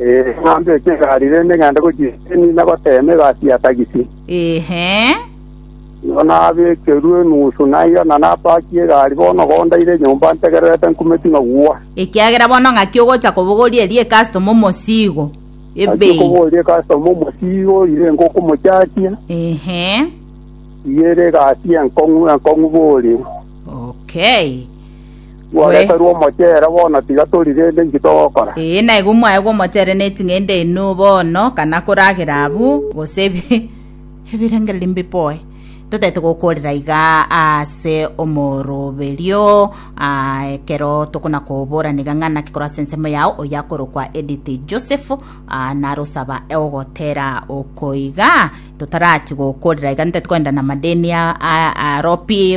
Ee, ng'a mbeche egari rende ng'ende gochia eseni nagoteeme egasi ya tagisi. Ehe. Nigo nabekerwe enusu naiga ng'a napakie egari bono gondaire enyomba ntegererete nkume ting'agwa. Ekiagera bono ng'aki ogocha kobogoria eria ecustom omosigo. Ng'aki Ebe. okoboria custom omosigo ire ngokomochachia Ehe. iga ere egasi enkong'u enkong'u boria. Okay. Tworeterwe omochere bono, tiga tori rende inki togokora? Ee, na igo mwaegwa omochere neting'ende inwe bono, kana koragera abwo, gose ebi- ebirengererio mbiboe. Totaete gokoorera iga ase omoroberio, ah, ekero tokona koborana iga ng'a naki korwa ase ensemo yao, oyo akorokwa Edith Joseph, ah, narosaba ogotera oko iga, totarati gokoorera iga, ntaete kogenda namadeni a- a- arobi,